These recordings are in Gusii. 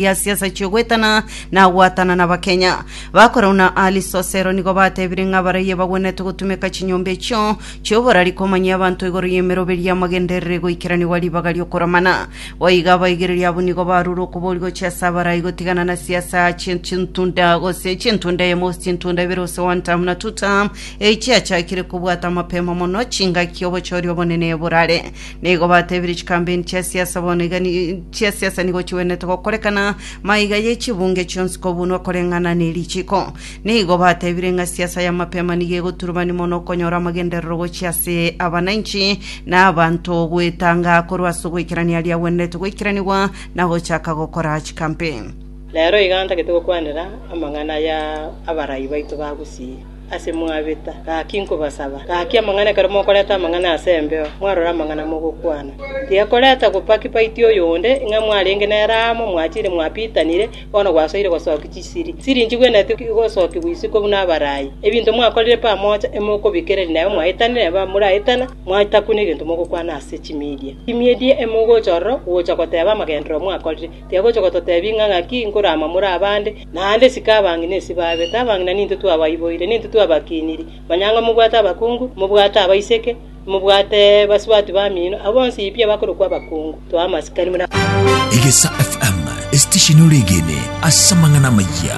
ya siasa chi'ogwetana na goatana n'Abakenya. Bakorau na Ali Sosero nigo batebire ng'a abaraia bagwenerete gotumeka chinyomba echio chi'oborari komanyia abanto igoro y'emeroberi y'amagenderero egoikeranigwa ribaga ri'okoramana. Boigo abaigereria abwo nigo barure okobori gochia ase abarai gotigana na siasa chi- chintunda gose chintunda eyemo gose chintunda ibere gose one term na two term echiachakire kobwata mapema mono chingaki obochori obonene borare Nigo batebirie chikambeni chia siasa bono iga ni- chia siasa nigo chigwenerete gokorekana maiga ye chibunge chionsi kobunwa koreng'ana nerichiko. Nigo batebire ng'a siasa ya mapema nigo egoturubani mono okonyora amagenderero gochia ase abananchi na abanto goetanga korwa ase ogoikerania aria agwenerete goikeranigwa na gochaka gokora chikampeni. Rero iga ntagete gokwanera amang'ana ya abarai baito ba gusii. Ase mwabeta, gaki nkobasaba, gaki amang'ana ekero mokoreta amang'ana ase embeo, mwarore amang'ana mogokwana. Tiga koreta gopaki-paitia oyonde, ng'a mwarenge nere amo, mwachire mwapitanire, bono gwasoire gosokia chisiri. Chisiri inche gwenerete igosokigwa isiko buna abarai. Ebinto mwakorire pamocha, emokobikereria nabo mwaetane nere bamoraetana, mwancha kune egento mogokwana ase chimidia. Chimidia emogocha ororo gocha goteba amagenderero mwakorire. Tiga gocha gototebia ng'a ng'aki nkoramamore abande, Naende isiko abang'ina esi baabete, abang'ina nintwe twabaiboire, nintwe twabakiiniri. Manya ng'a mobwate abakungu, mobwate abaiseke, mobwate basubati bamino, abwo bonsi pi abakorokwa abakungu. Toa amasikani buna abwo. Egesa FM, esitesheni oregene ase amang'ana amayia.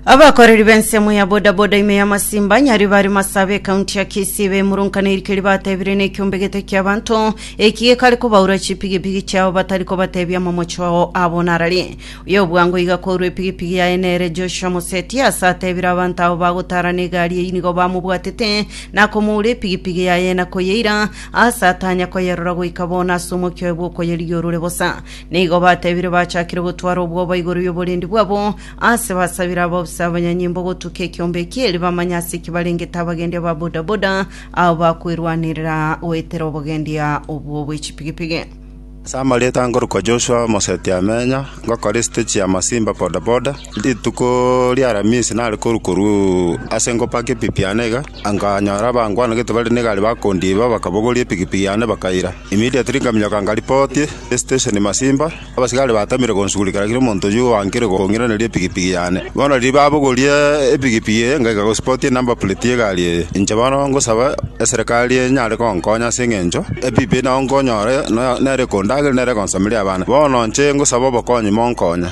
Abakoreri b'ensemo ya bodaboda ime ya Masimba nyari bari Masaaba ekaunti ya Kisii bemurunkaneirie keria batebire nekiombe gete ki'abanto eki gekare kobaura chipigipigi chiabo batari kobatebia amamocho ao abonarari. Y'obwango iga korwa epigipigi yaye nere Joshua Moseti, aase ateebire abanto abo bagotaarana egari eyio nigo bamobwatete, na komoura epigipigi yaye, na koyeira, aase atanya koyerora goika bono ase omokia oye bw'okoyerigia orure bosa. Nigo bateebire bachakire gotwara obwoba igoro y'oborendi bwabo, aase basabire abaofisa abanyanyimbo gotuka ekeombe ekio, erio bamanye ase ki barengete abagendi aba bodaboda, abo bakwerwanerera goetera obogendia obwo bw'echipigipigi. Ase amarieta ngorokwa Joshua Omoseti-Amenya, ngokora esite chi'amasimba bodaboda. Rituko ri'Alamisi nare korwa korwa ase ngopaka epipi yane iga, nkanyora abangwanagete bare negari bakondiba, bakabogoria epigipigi yane bakaira. Immediately nkaminyoka nkaripotie esitesheni masimba, abasigari batamire gonsugurika gaki nomonto oyio oankire kong'iraneria epigipigi yane. Bono riria babogorie epigipigi eye ngaika gosipotia enumber plate y'egari eye. Inche bono ngosaba eserekari enyare gonkonya ase eng'encho. Ebibe nao nkonyore, na nere kondagere, nere konsameria abana. Bono nche ngosaba obokonyi, monkonye.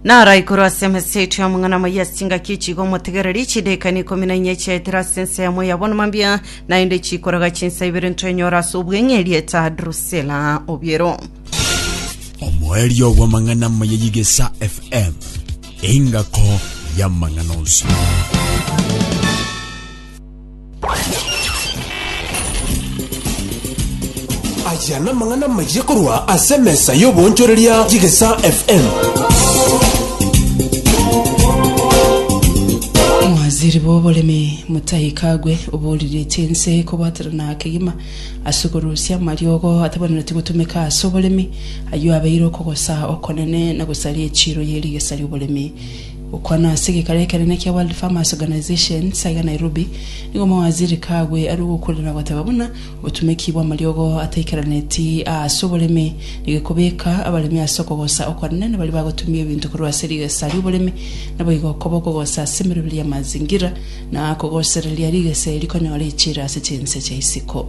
Naro igoro ase emesa yaito y'amang'ana amaya ase chingaki echi iga omotegereri, chidekani ikomi na inya chiaetire ase ense yamo yabonwa mambia, naende chikoraga chinsa ibere ntwenyore ase obweng'e erieta Drusila obiero. Omoerio bw'amang'ana amaya y'Igesa FM, engako y'amang'ana onsi. Aya namang'ana amayia korwa ase emesa y'oboonchoreria y'Egesaa FM. Omowaziri bw'oboremi Mutahi Kagwe obooriretie ense kobwaterana kegima ase korusia amariogo atabanereti gotumeka ase oboremi, ayio abeire okogosa okonene na gosaria echiro ye rigesa ri'oboremi. Okwana ase egekaro ekenene kia World Farmers Organization sa iga Nairobi, nigo omowaziri Kagwe arue gokurera na goteba buna obotumeki bw'amariogo ataikaraneti aa ase oboremi negekobeka abaremi ase okogosa okwanene na baria bagotumia ebinto korwa ase rigesa ri'oboremi naboigo okoba okogosa ase emeroberi ya mazingira na kogosereria rigesa eri rikonyore echira ase chinse chia isiko.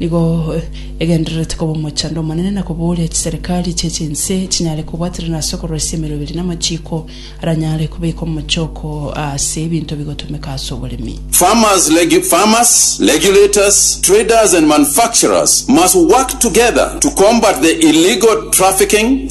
Nigo egendererete koba omochando omonene na kobooria chiserikari chie chinse chinyare kobwaterana ase okoroisia emeroberi na amachiiko aranyare kobeeka omochoko ase ebinto bigotomeka ase oboremi. Farmers, regu, farmers, regulators, traders and manufacturers must work together to combat the illegal trafficking,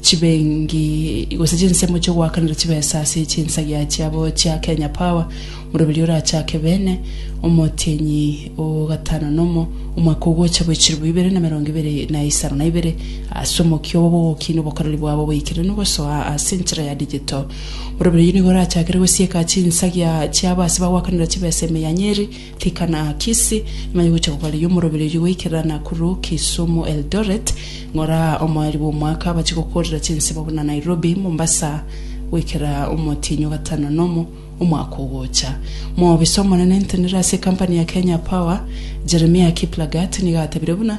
Chibengi gose chinsemo chi'ogoakanera chibesa ase chinsagia chiabo chia Kenya Power, Moroberia orachake Bene, Omotienyi o gatano nomo, omwaka ogocha bwe chilifu ibere na merongo ibere na isano na ibere, ase omokia obo bw'ogokina obokoreri bwabo boikeranu gosoa ase enchera ya digital. Moroberia oyio nigo orachakere gosieka chinsagia chiabo ase bagoakanera chibesa emeyanyeri, Tikana Kisii, nyuma yogocha kobareyia omorobererio goikerera Nakuru, Kisumu, Eldoret, ng'ora omoeri bw'omwaka abache gokorera chinsemo buna Nairobi, Mombasa, goikera omotienyi o gatano na omo omwaka ogocha. Moobisa omonene entenero ase ekampani ya Kenya Power, Jeremiah Kiplagat nigo atebirie buna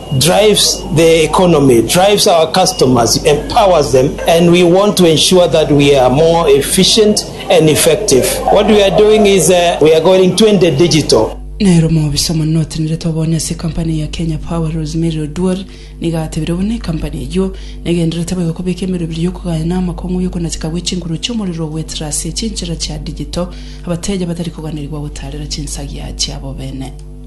drives the economy, drives our customers, empowers them, and we want to ensure that we are more efficient and effective. What we are doing is uh, we are going 20 digital. Nero omobisa omonene otenerete obonye ase ecompany ya Kenya Power Rosemary Oduor nigo atebire buna ecompany eyio negendererete boigo kobeka emerwe ebere y'okogaya na amakong'u y'okonacheka gwe chinkuru chi'omorero ogoetera ase chinchera chia digital abateja batari koganerigwa gotaarera chinsagia chiabo bene.